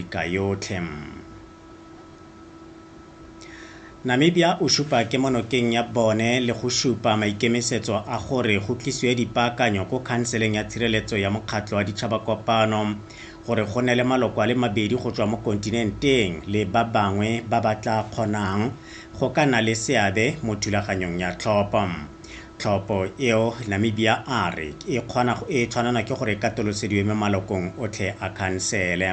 Afrika yotlhe. Namibia o supa kemonokeng ya bone le go supa maikemisetso a gore go tlisiwe dipaakanyo ko Khanseleng ya Tshireletso ya Mokgatlho wa Ditšhabakopano gore go nne le maloko a le mabedi go tswa mo kontinenteng le ba bangwe ba ba tla kgonang go ka nna le seabe mo thulaganyong ya tlhopho. Tlhopho eo, Namibia a re e kgona go e tshwanelwa ke gore e katolosediwe mo malokong otlhe a khansele.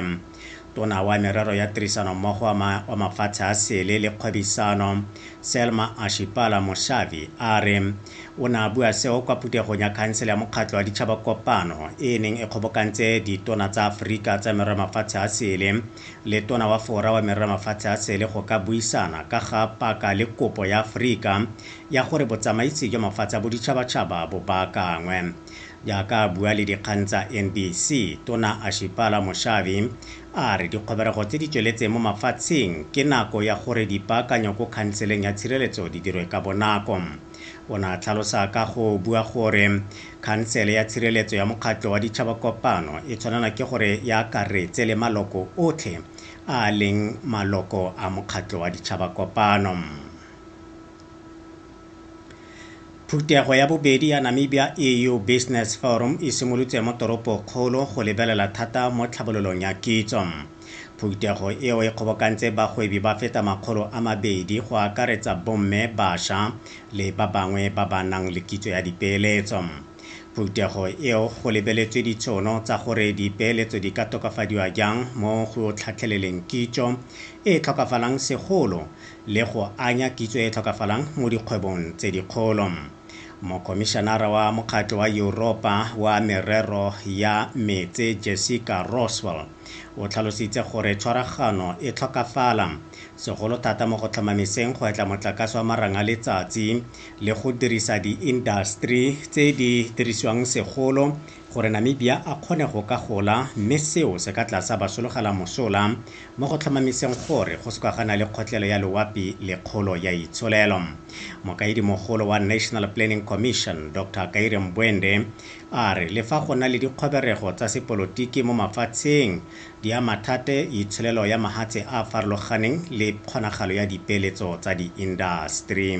Tona wa Merero ya Tirisanommogo wa Mafatshe a Sele le Kgwebisano, Selma Ashipala Moshavi a re o ne a bua seo kwa phuthegong ya Khansele ya Mokgatlho wa Ditšhaba Kopano e e neng e kgobokantse Ditona tsa Aforika tsa Merero ya Mafatshe a Sele le Tona wa Fora wa Merera Mafatshe a Sele go ka buisana ka ga paka le kopo ya Aforika ya gore botsamaisi jwa mafatshe a boditšhabatšhaba bo baakangwe. Jaaka a bua le dikgang tsa NBC, Tona Ashipala Moshavi a re dikgoberego tse di tsweletseng mo mafatsheng ke nako ya gore dipaakanyo ko khanseleng ya tshireletso di dirwe ka bonako. O ne a tlhalosa ka go bua gore Khansele ya Tshireletso ya Mokgatlho wa Ditšhabakopano e tshwanelwa ke gore e akaretse le maloko otlhe a a leng maloko a Mokgatlho wa Ditšhabakopano. Phuthego ya bobedi ya Namibia EU Business Forum e simolotse mo toropokgolo go lebelela thata mo tlhabololong ya kitso. Phuthego eo e kgobokantse bagwebi ba feta makgolo a mabedi go akaretsa bomme, basha le ba bangwe ba ba nang le kitso ya dipeeletso. Phuthego eo go lebeletswe ditshono tsa gore dipeeletso di ka tokafadiwa jang mo go tlhatlheleleng kitso e e tlhokafalang segolo le go anya kitso e e tlhokafalang mo dikgwebong tse dikgolo. Mokhomišenara wa Mokgatlho wa Yuropa wa Merero ya Meetse Jessica Roswell O tlhalositse gore tshwaragano e tlhokafala, segolo thata mo go tlhomamiseng go etla motlakase wa marang a letsatsi le go dirisa diindaseteri tse di dirisiwang segolo gore Namibia a kgone go ka gola mme seo se ka tla sa ba sologela mosola mo go tlhomamiseng gore go soka ga na le kgotlelo ya loapi le kgolo ya itsholelo. Mokaedimogolo wa National Planning Commission, Doctor Kaire Mbwende, A re le fa go na le dikgoberego tsa sepolotiki mo mafatsheng, di ama thate itsholelo ya mahatshe a a farologaneng le kgonagalo ya dipeeletso tsa diindaseteri.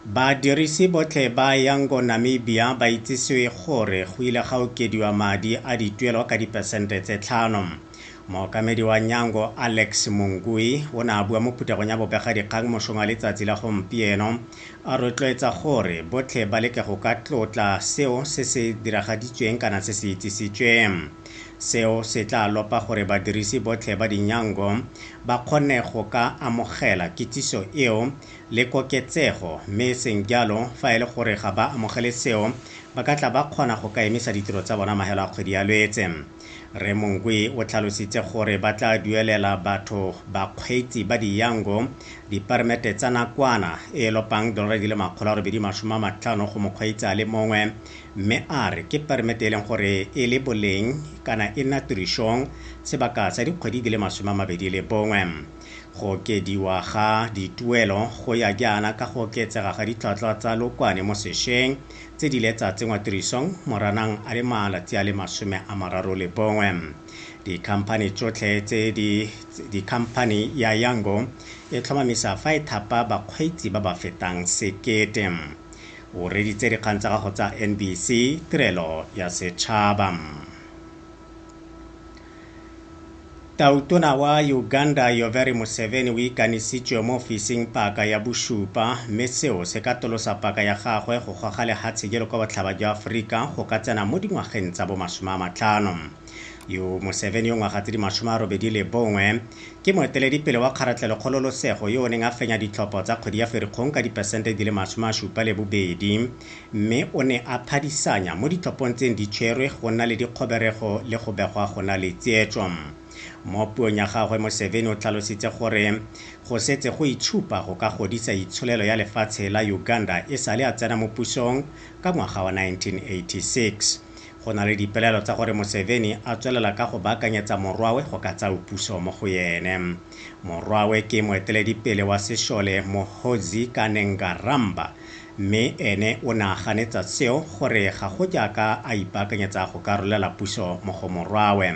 Badirisi botlhe ba Yango Namibia ba itsisiwe gore go ile ga okediwa madi a dituelo ka dipesente tse tlhano. Mookamedi wa Nyango Alex Mungui o ne a bua mo phuthegong ya bobegadikgang mosong wa letsatsi la gompieno, a rotloetsa gore botlhe ba leke go ka tlotla seo se se diragaditsweng kana se se itsisitsweng. Seo se tla lopa gore badirisi botlhe ba dinyango ba kgone go ka amogela kitsiso eo le koketsego mme e seng jalo fa e le gore ga ba amogele seo ba ka tla ba kgona go ka emisa ditiro tsa bona mahelo a kgwedi ya Lwetse. Rre Monkwe o tlhalositse gore ba tla duelela batho bakgweetsi ba diyango dipermete tsa nakwana e e lopang dolora di le makgolo a robedi masome a matlhano go mokgweetsi a le mongwe mme a re ke permete e leng gore e le boleng kana e nna tirišong sebaka sa dikgwedi di le masome a mabedi le bongwe. Go okediwa ga dituelo go ya jaana ka go oketsega ga ditlhwatlhwa tsa lokwane mo sešweng tse di ile tsa tsenngwa tirisong Moranang a le malatsi a le masome a mararo le bongwe. Dikhamphani tsotlhe tse di dikhamphani ya Yango e tlhomamisa fa e thapa bakgweetsi ba ba fetang sekete. O reditse dikgang tsa gago tsa NBC, Tirelo ya Setšhaba. Tautona wa Uganda Yoweri Museveni o ikanisitswe mo ofising paka ya bosupa mme seo se ka tolosa paka ya gagwe go goga lehatshe jelo kwa botlhaba jwa Aforika go ka tsena mo dingwageng tsa bo masome a matlhano. Yo Museveni yo ngwaga tse di masome a robedi le bongwe ke moeteledipele wa kgaratlhelokgololosego yo o neng a fenya ditlhopho tsa kgwedi ya Ferikgong ka dipesente di le masome a supa le bobedi mme o ne a phadisanya mo ditlhophong tseng di tshwerwe go nna le dikgoberego le go begwa go na le tsietso. Mo puong ya gagwe Museveni o tlhalositse gore go setse go itshupa go ka godisa itsholelo ya lefatshe la Uganda e sale a tsena mo pusong ka ngwaga wa 1986. Go na le dipelaelo tsa gore Museveni a tswelela ka go baakanyetsa morwawe go ka tsao puso mo go ene. Morwawe ke moeteledipele wa sešole Muhoozi Kanengaramba, mme ene o ne a ganetsa seo gore ga go jaaka a ipaakanyetsa go ka rolela puso mo go morwawe.